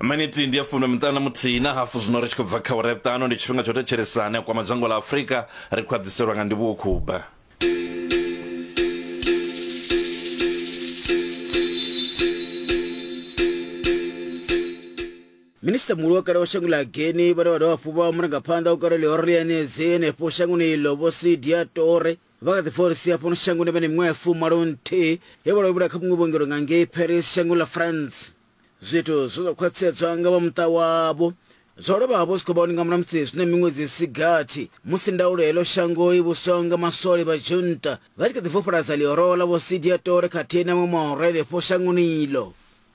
miniti ndi ya fumi miṱanu na muthihi na hafu zwino ri tshi khou bva kha ure ṱano ndi tshifhinga tsho thetshelesani a kwama dzhango ḽa afurika ri khou aḓiselwa nga ndivhuwo khuba minista muhulu wa kale wa shango ḽa geni vhane vha dovha hafhu vha murangaphanḓa wa kale ḽihoro ḽiyanedzi henefho shangoni iḽo vho sidia tore Vha kha ḓi forisiwa fhano shangoni vha na miṅwaha ya fumalo-nthihi he vha lovhela kha vhuṅwe vhuongelo nga ngei Paris shangoni ḽa France. Zwithu zwe zwa khwaṱhisedzwa nga vha muṱa wavho zwo lovha hafhu zwi khou vha hone nga muramusi zwi na miṅwedzi i si gathi musi ndaulo ya heḽo shango i vhuswaho nga maswole vha junta vha tshi kha ḓi vhofhololadza ḽihoro ḽa Vho Sidia Tore khathihi na vhaṅwe mahoro henefho shangoni iḽo.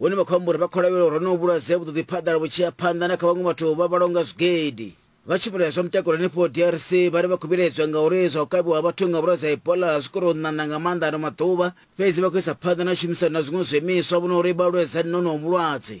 Hone vha khou amba uri vha khou lavhelela uri honoho vhulwadze vhu ḓo ḓi phaḓala vhu tshi ya phanḓa na kha vhaṅwe vhathu vha vhalaho nga zwigidi. Vha tshumelo ya zwa mutakalo henefho DRC vha ri vha khou vhilaedzwa ngauri zwa u kavhiwa ha vhathu nga vhulwadze ha Ebola zwi khou tou ṋaṋa nga maanḓa ano maḓuvha, fhedzi vha khou isa phanḓa na tshumisano na zwiṅwe zwiimiswa vhona uri vha lwedzane na honoho vhulwadze.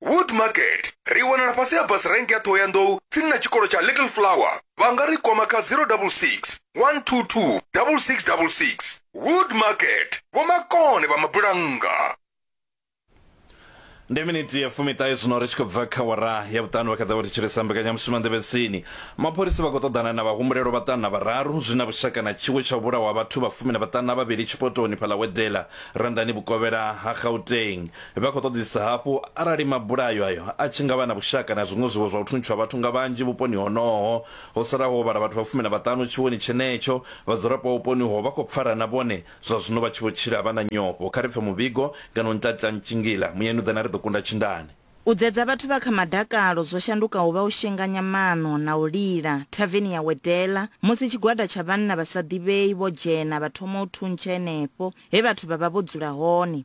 wood market ri wanala fhasi ha bus rank ya ṱhohoyanḓou tsini na tshikolo tsha little flower vha nga ri kwama kha 066 122 6666 wood market vhomakone vha mabulannga ndi miniti ya fumiṱahe zwino ri tshi khou bva kha wara ya vhuṱanu vha kha ḓa vha thetshelesa mbekanyamushumo nḓevhetsini mapholisa vha khou ṱoḓana na vhahumbulelo vhaṱanu na vhararu zwi na vhushaka na tshiwo tsha u vhulawa vhathu vha fumi na vhaṱanu na vhavhili tshipotoni phaḽawedela randani vhukovhela ha gauteng Vha khou ṱoḓisisa hafhu arali mabulayo ayo a tshi nga vha na vhushaka na zwiṅwe zwiwo zwa u thuntshiwa vhathu nga vhanzhi vhuponi honoho. Ho salaho ho vhala vhathu vha fumi na vhaṱanu tshiwoni tshenetsho. Vhadzulapo vha vhuponi uho vha khou pfara na vhone zwa zwino vha tshi vho tshila vha na nyofho. Kha ri pfe muvhigo ngeno Ntlatlila Ntshingila muyani u ḓe na ri ḓo kunda tshindani. U dzedza vhathu vha kha madakalo zwo shandukaho vha u shenganya maṋo na u lila. Thaveni ya wedela musi tshigwada tsha vhanna vha sa ḓivhei vho dzhena vha thoma u thuntsha henefho he vhathu vha vha vho dzula hone.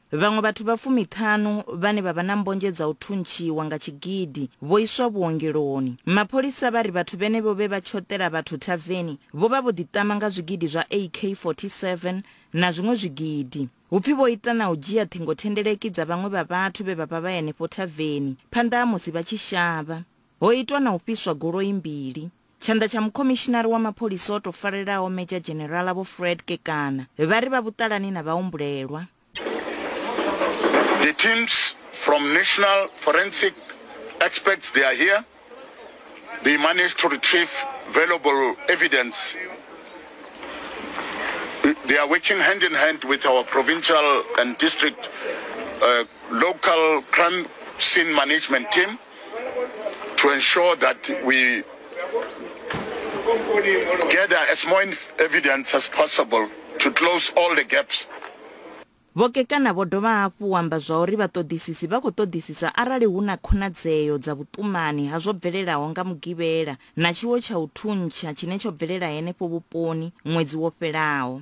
Vhaṅwe vhathu vha fumiṱhanu vhane vha vha na mbonzhe dza u thuntshiwa nga tshigidi vho iswa vhuongeloni. Mapholisa vha ri vhathu vhenevho vhe vha tshoṱela vhathu thaveni vho vha vho ḓiṱama nga zwigidi zwa AK-47 na zwiṅwe zwigidi. Hu pfi vho ita na u dzhia ṱhingothendeleki dza vhaṅwe vha vhathu vhe vha vha vha henefho thaveni phanḓa ha musi vha tshi shavha. Ho itwa na u fhiswa goloi mbili. Tshanḓa tsha mukhomishinari wa mapholisa o tou farelaho Medzha Dzhenerala Vho Fred Kekana vha ri vha vhuṱalani na vhahumbulelwa. The teams from National Forensic Experts they are here. They managed to retrieve valuable evidence. They are working hand in hand with our provincial and district uh, local crime scene management team. to ensure that we gather as more evidence as possible to close all the gaps. Vho Kekana vho dovha hafhu amba zwa uri vhaṱoḓisisi vha khou ṱoḓisisa arali hu na khonadzeo dza vhuṱumani ha zwo bvelelaho nga Mugivhela na tshiwo tsha u thuntsha tshine tsho bvelela henefho vhuponi ṅwedzi wo fhelaho.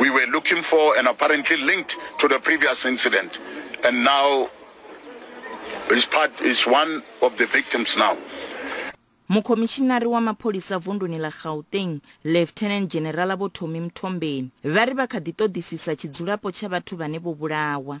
we were looking for and apparently linked to the previous incident. And now is part is one of the victims now. mukhomishinari wa mapholisa vunduni ḽa gauteng lieutenant generala vho thomi mthombeni vha ri vha kha ḓi ṱoḓisisa tshidzulapo tsha vhathu vhane vho vhulawa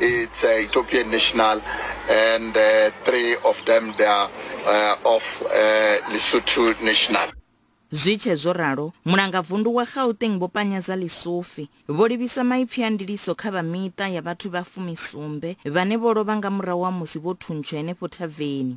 It's uh, Ethiopian national, and uh, three of them they are uh, of uh, Lesotho national. zwi tshe zwo ralo mulangavundu wa gauteng vho panyeza lisufi vho livhisa maipfi a ndiliso kha vha miṱa ya vhathu vha fumisumbe vhane vho lovha nga murahu ha musi vho thuntsha henefho thaveni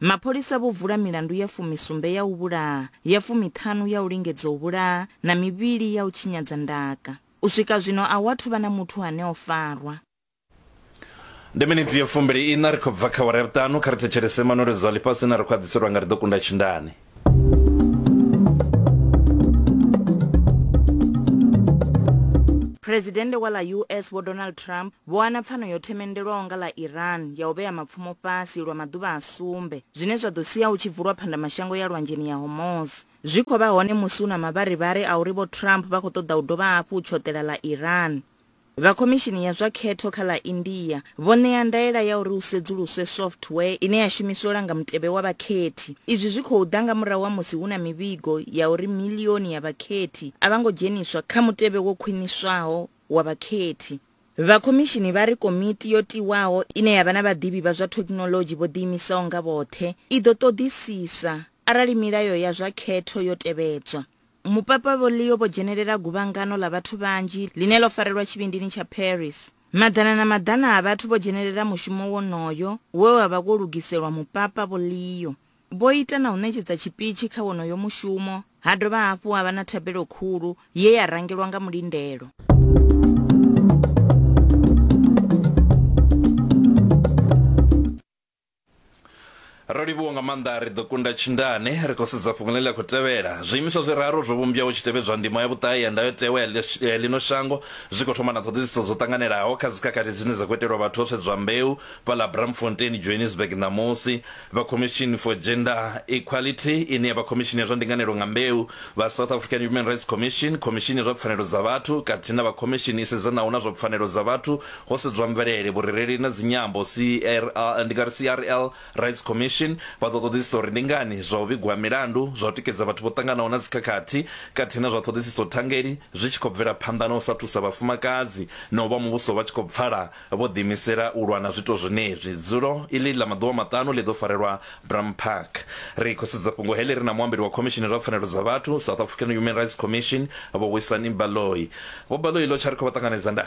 Mapholisa vho vula milandu ya fumisumbe ya u vhulaha, ya fumiṱhanu ya u lingedza u vhulaha na mivhili ya u tshinyadza ndaka. U swika zwino a hu athu vha na muthu ane o farwa. Ndi miniti ya fumbili-iṋa, ri khou bva kha awara ya vhuṱanu. Kha ri thetshelese manweledzo a ḽifhasi ane ra khou a ḓiselwa nga Ri Ḓo Kunda Tshindani. Phresidennde wa ḽa US Vho Donald Trump vho wana pfano yo themendelwaho nga ḽa Iran ya u vhea mapfumo fhasi lwa maḓuvha a sumbe, zwine zwa ḓo sia hu tshi vulwa phandamashango ya Lwanzheni ya Hormuz. Zwi khou vha hone musi hu na mavharivhari a uri Vho Trump vha khou ṱoḓa u dovha hafhu u tshoṱela ḽa Iran. Vha Khomishini ya zwa Khetho kha ḽa India vho ṋea ndaela ya uri hu sedzuluswe software ine ya shumiswa u langa mutevhe wa vhakhethi. Izwi zwi khou ḓa nga murahu ha musi hu na mivhigo ya uri miḽioni ya vhakhethi a vha ngo dzheniswa kha mutevhe wo khwiṋiswaho wa vhakhethi. Vha khomishini vha ri komiti yo tiwaho ine ya vha na vhaḓivhi vha zwa thekinoḽodzhi vho ḓiimisaho nga vhoṱhe i ḓo ṱoḓisisa arali milayo ya zwa khetho yo tevhedzwa. Mupapa Vho Leo vho dzhenelela guvhangano ḽa vhathu vhanzhi ḽine ḽo farelwa tshivhindini tsha Paris. Maḓana na maḓana a vhathu vho dzhenelela mushumo wonoyo we wa vha wo lugiselwa Mupapa Vho Leo. Vho ita na u ṋetshedza tshipitshi kha wonoyo mushumo, ha dovha hafhu ha vha na thabelo khulu ye ya rangelwa nga mulindelo. ro livhuwa nga maanḓa ri ḓo kunda tshindane ri khou sedza fhungo ḽine ḽa khou tevhela zwiimiswa zwiraru zwo vhumbwaho tshi tevhedzwa ndimo ya vhuṱahe ya ndayotewa ya ḽi- ya ḽino shango zwi khou thoma na ṱhoḓisiso dzo ṱanganelaho kha dzikhakhathi dzine dza khou itelwa vhathu ho sedzwa mbeu fhaḽa bramfontein johannesburg ṋamusi vha commission for gender equality ine ya vha khomishini ya zwa ndinganelo nga mbeu vha south african human rights commission khomishini ya zwa pfanelo dza vhathu khathihi na vha khomishini i sedzanaho na zwa pfanelo dza vhathu Ho sedzwa mvelele, vhurereli na dzinyambo, CRL, ndi nga ri CRL Rights Commission vha ḓo ṱoḓisisa uri ndi ngani zwa u vhigwa ha milandu zwa u tikedza vhathu vho ṱanganaho na dzikhakhathi khathihi na zwa ṱhoḓisiso thangeli zwi tshi khou bvela phanḓa na u sa thusa vhafumakadzi na u vha muvhuso vha tshi khou pfala vho ḓiimisela u lwa na zwiito zwenezwi. Dzulo iḽi ḽa maḓuvha maṱanu ḽi ḓo farelwa Bram Park. Ri khou sedza fhungo heḽi ri na muambeli wa Khomishini zwa Pfanelo dza Vhathu, South African Human Rights Commission, Vho Wisani Baloyi. Vho Baloyi, ḽo tsha ri khou vha ṱanganedza nda.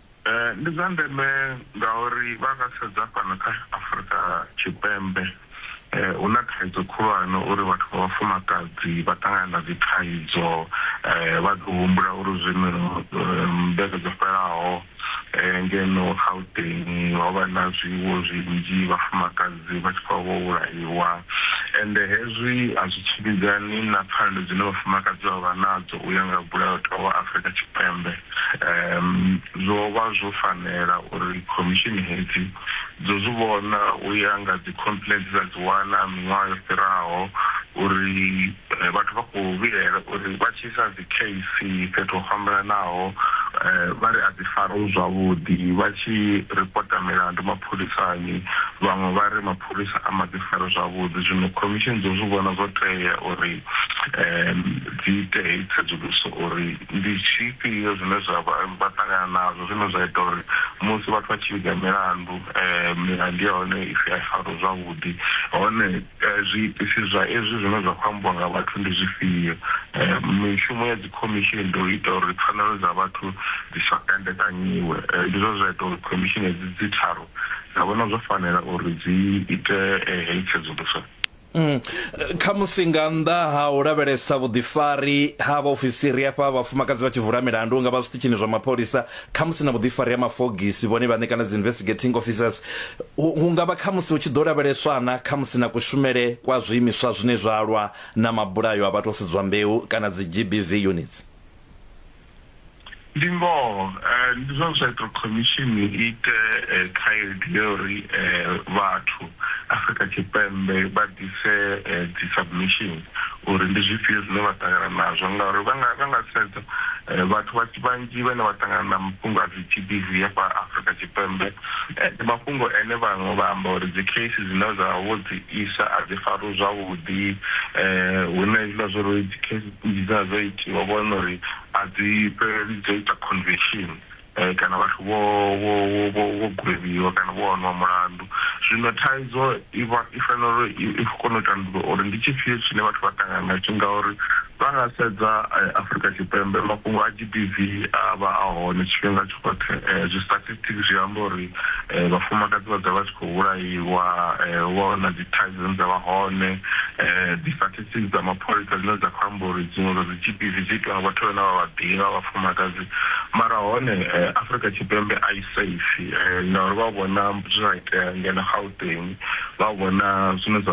Ndi zwa ndeme ngauri vha nga sedza fhano kha Afurika Tshipembe hu na thaidzo khulwane uri vhathu vha vhafumakadzi vha ṱangana na dzi thaidzo vha ḓo humbula uri zwino mmbete dzo fhelaho ngeno Gauteng ho vha na zwiwo zwinzhi vhafumakadzi vha tshi khou vho vhulaiwa ende hezwi a zwi tshimbidzani na pfhanelo dzine vhafumakadzi vha vha nadzo u ya nga mulayotewa wa Afurika Tshipembe. Zwo vha zwo fanela uri khomishini hedzi dzo zwi vhona u ya nga dzikhompuleni dze dza dzi wana miṅwaha yo fhiraho uri vhathu vha khou vhilaela uri vha tshi isa dzikheisi fhethu ho fhambananaho vha ri a dzi fariwi zwavhuḓi, vha tshi ripota milandu mapholisani vhaṅwe vha ri mapholisa a ma dzi fari zwavhuḓi. Zwino khomishini dzo zwi vhona zwo tea uri dzi ite heyi tsedzuluso uri. Ndi zwifhio zwine zwa vha vha ṱangana nazwo zwine zwa ita uri musi vhathu vha tshi vhiga milandu milandu ya hone ipfhi a i fariwe zwavhuḓi hone zwiitisi zwa ezwi zwine zwa kho ambiwa nga vhathu ndi zwifhio? Mishumo ya dzi khomishini ndi u ita uri pfhanelo dza vhathu dzi sa kandekanyiwe ndi zwone zwa ita uri khomishini hedzi dzi tharu dza vhona zwo fanela uri dzi ite heyi tsedzuluso. Mm. Khamusi nga nnḓa ha u lavhelesa vhuḓifari ha vhaofisiri hafha vhafumakadzi vha tshi vula milandu nga vha zwiṱitshini zwa mapholisa khamusi na vhuḓifari ha mafogisi vhone vhaṋe kana dzi investigating officers hu nga vha khamusi hu tshi ḓo lavheleswa na khamusi na kushumele kwa zwiimiswa zwine zwa lwa na mabulayo a vhathu o sedzwa mbeu kana dzi GBV units Ndi ngoho, ndi zwone zwa ita uri khomishini i ite khaedu ya uri vhathu Afrika Tshipembe vha ḓise dzi submission uri ndi zwifhio zwine vha ṱangana nazwo ngauri vha nga vha nga sedza vhathu vha vhanzhi vhane vha ṱangana na mafhungo a dzi G_B_V hafha Afrika Tshipembe ndi mafhungo ane vhaṅwe vha amba uri dzi case dzine dza vha vho dzi isa a dzi fariwi zwavhuḓi hune hezwiḽa zwa uri dzi case Nnzhi dza dzo itiwa vho wana uri a dzi fheleli dzo ita conviction kana vhathu vho vho vho vho gwevhiwa kana vho wanwa mulandu. Zwino thaidzo i vha i fanela uri i kone u tandulula uri ndi tshifhio tshine vhathu vha ṱangana na tsho ngauri vha nga sedza Afrika Tshipembe mafhungo a G_B_V a vha a hone tshifhinga tshoṱhe zwi statistics zwi amba uri vhafumakadzi vha dzula vha tshi kho vhulaiwa hu vha hu na dzi thaidzo dzine dza vha hone dzi statistics. Ofisi dza mapholisa dzine dza khou amba uri dziṅwe dza dzi GBV dzi itiwa nga vhathu vhane vha vha ḓivha, vhafumakadzi, mara hone Afrika Tshipembe a i safe ngauri vha vhona zwe zwa itea ngeno Gauteng, vha vhona zwine zwa.